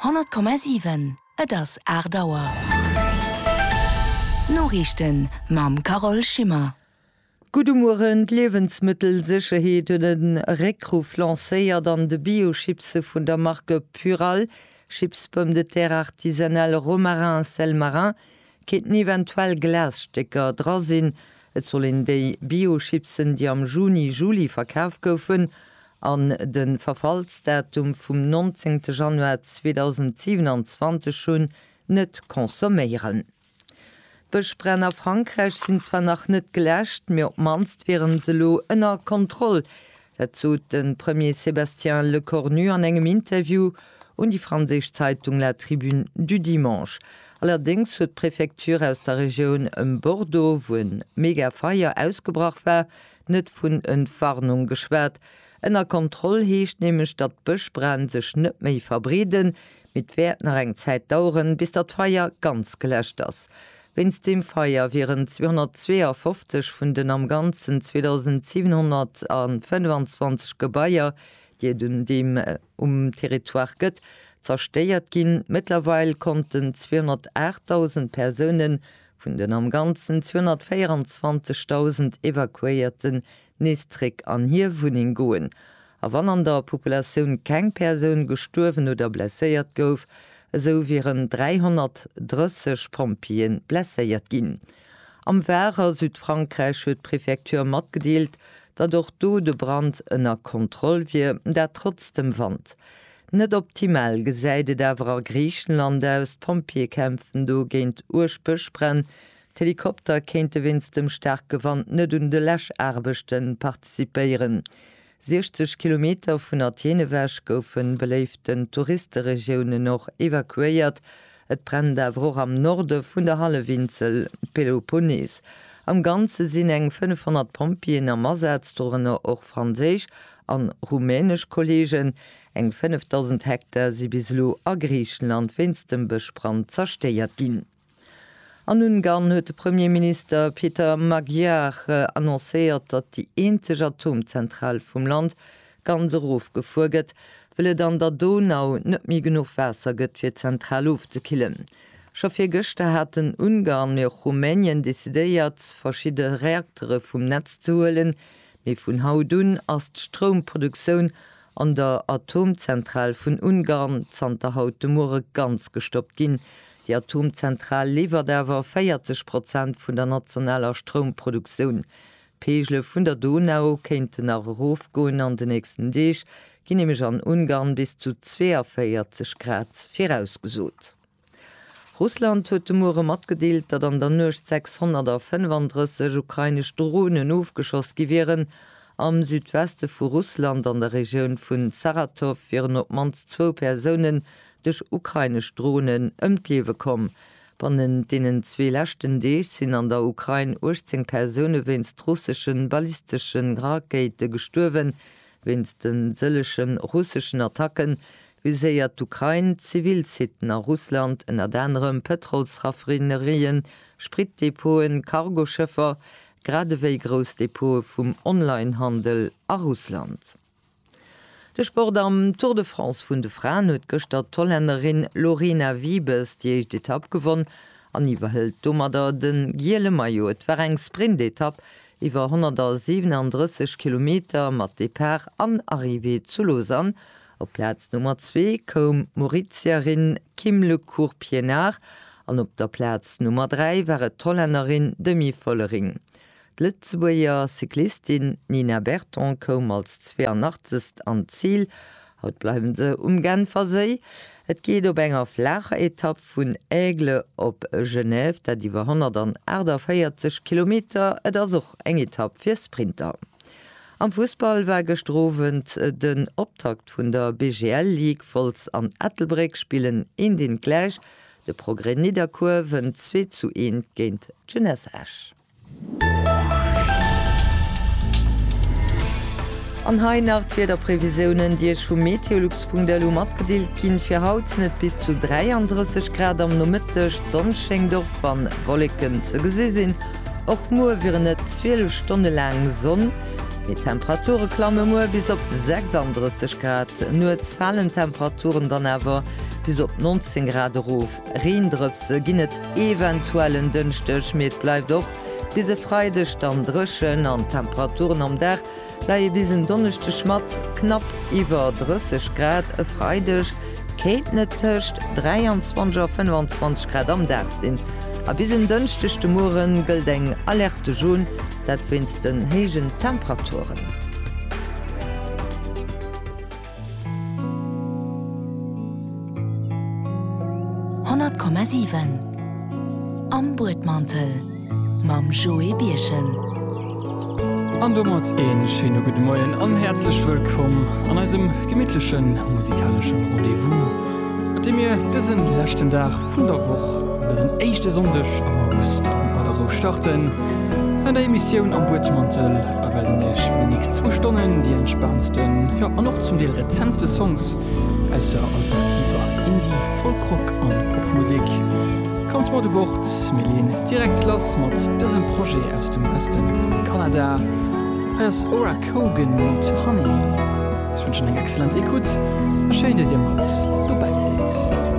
100,7 Et ass 8 Auer. D'Noriichten mam Carole Schimmer. Gudde Mueren, D'Liewensmëttelsécherheet huet e Réckruff lancéiert an de Bio-Chipse vun der Marque Purall, Chips Pommes de terre artisanales Romarin Sel Marin, kéinten eventuell Glasstécker dra sinn. Et soll een déi Bio-Chipsen, déi am Juni, Juli verkaf goufen, an de Verfallsdatum vum 19 Januar 2027 hunn, net consomméieren. D'Bëschbränn a Frankräich sinn zwar nach net geläscht, mee op d'mannst wiere se elo ënner Kontroll. Dat sot de Premier Sébastien Lecornu an engem Interview un déi franséisch Zeitung La Tribune du Dimanche. Allerdéngs huet d'Prefecture aus der Regioun ëm Bordeaux, wou e Megafeier ausgebrach war, net vun Entwarnung geschwat. Ënner Kontroll heescht nämlech, datt d'Bëschbränn sech net méi verbreeden, mee et wäert nach eng Zäit daueren, bis datt d'Feier ganz geläscht ass. Wéinst deem Feier wieren 252 vun den am Ganzen 2.725 Gebaier, déi et un deem um Territoire gëtt, zerstéiert ginn. Mëttlerweil konnten 208.000 Persounen Vun den am Ganzen 224.000 Evakuéierten nees zréck an hir Wunneng goen. A wann an der Populatioun keng Persoun gestuerwen oder blesséiert gouf, esou wieren 330 Pompjeeë blesséiert ginn. Am Var a Südfrankräich huet d'Prefecture matgedeelt, datt och do de Brand ënner Kontroll wier, dat trotz dem Wand. Net optimal gesäit et awer a Griichenland aus. D'Pompjeeë kämpfen do géint uerg Bëschbränn. D'Helikopter kéinte wéinst dem staarke Wand net un de Läschaarbechte participéieren. 60 Kilometer vun Athen ewech goufe beléiften Touristeregiounen och evakuéiert, Et brennt awer och am Norde vun der Hallefinsel Peloponnes. Am Ganze sinn eng 500 Pompjeeën am Asaz, dorënner och franséisch an rumänesch Kolleegen. Eng 5.000 Hektar si bis elo a Griichenland wéinst dem Bëschbrand zerstéiert ginn. An Ungarn huet de Premierminister Peter Magyar annoncéiert, datt déi eenzeg Atomzentral vum Land ganz erofgefuer gëtt, wëll et an der Donau net méi genuch Waasser gëtt fir d'Zentral ofzekillen. Scho virgëschter haten Ungarn, mee och Rumänien decidéiert verschidde Reaktere vum Netz ze huelen, mee vun haut un ass d'Stroumproduktioun an der Atomzentral vun Ungarn zanter haut de Muere ganz gestoppt ginn. Déi Atomzentral liwwert awer 40 Prozent vun der nationaler Stroumproduktioun. D'Peegele vun der Donau kéinten nach erofgoen, an de nächsten Deeg ginn nämlech an Ungarn bis zu 42 Grad virausgesot. Russland huet de Muere matgedeelt, datt an der Nuecht 635 ukrainesch Dronen ofgeschoss gi wieren. Am Südweste vu Russland, an der Regioun vun Saratow, wieren op d'mannst zwou Persounen duerch ukrainesch Dronen ëm d'Liewe komm. Bannent deenen zwee leschten Deeg sinn an der Ukrain 18 Persoune wéinst russesche ballistesche Rakéite gestuerwen. Wéinst de sëllege russeschen Attacke viséiert d'Ukrain zivil Siten a Russland, ënnert anerem Pëtrolsraffinerien, Spritdepoten, Cargoschëffer, gradewéi grouss Depote vum Onlinehandel a Russland. De Sport, Am Tour de France vun de Fraen huet gëschter d'Hollännerin Lorena Wiebes déi éischt Etapp gewonn an iwwerhëlt domadder de giele Maillot. Et war eng Sprintetapp iwwer 137 Kilometer mat Depart an Arrivée zu Lausanne. Op d'Plaz Nummer zwee koum d'Mauritierin Kim Le Court Pienaar an op der Plaz Nummer dräi war et d'Hollännerin Demi Vollering. D'Lëtzebuerger Cyclistin Nina Berton koum als 82. an d'Zil. Haut bleiwen se um Genferséi. Et geet op enger flaacher Etapp vun Aigle op Genève, dat iwwer 148 Kilometer. Et ass och eng Etapp fir Sprinter. Am Fussball war gëschter Owend den Optakt vun der BGL Ligue. Wolz an Ettelbréck spillen een deen gläich. De Progrès Nidderkuer wënnt 2 zu 1 géint d'Jeunesse Esch. An hei nach d'Wiederprevisiounen, déi Iech vu meteolux.lu matgedeelt ginn. Fir haut sinn et bis zu 33 Grad am Nomëtteg, d'Sonn schéngt och wann Wolleken ze gesi sinn. Och muer wieren et 12 Stonne laang Sonn, mee d'Temperature klamme muer bis op 36 Grad. Nuets falen d'Temperaturen dann awer bis op 19 Grad erof. Reendrëpse ginn et eventuell en Dënschdeg, mee et bleift och bis e Freideg dann dréchen an d'Temperaturen am Dag leie bis en Donneschdeg mat knapp iwwer 30 Grad. E Freideg kéinten et tëscht 23 a 25 Grad am Dag sinn a bis en Dënschdeg de Muere gëllt eng Alerte jaune, dat wéinst den héijen Temperaturen. Honnert Komma siwen Am Buedmantel mam Joé Birchen. An domat een schéine gudde Moien an häerzlech wëllkomm an eisem gemittlechen musikalesche Rendez-vous. Mat deem mir dësen leschten Dag vun der Woch an dësen éischte Sonndeg am August an aller Rou starten an der Emissioun Am Buedmantel a wellen Iech fir déi nächst zwou Stonnen déi entspaantsten, jo an och zum Deel rezentste Songs aus der alternativer Indie-, Folk-Rock an Popmusek. Kommt mat u Bord, mir leeën direkt lass mat dësem Projet aus dem Weste vum Kanada. Hei ass Oracle. Kogan mat Honey. Ech wënschen eng excellent Ecoute a schéin, datt dir mat dobäi sidd.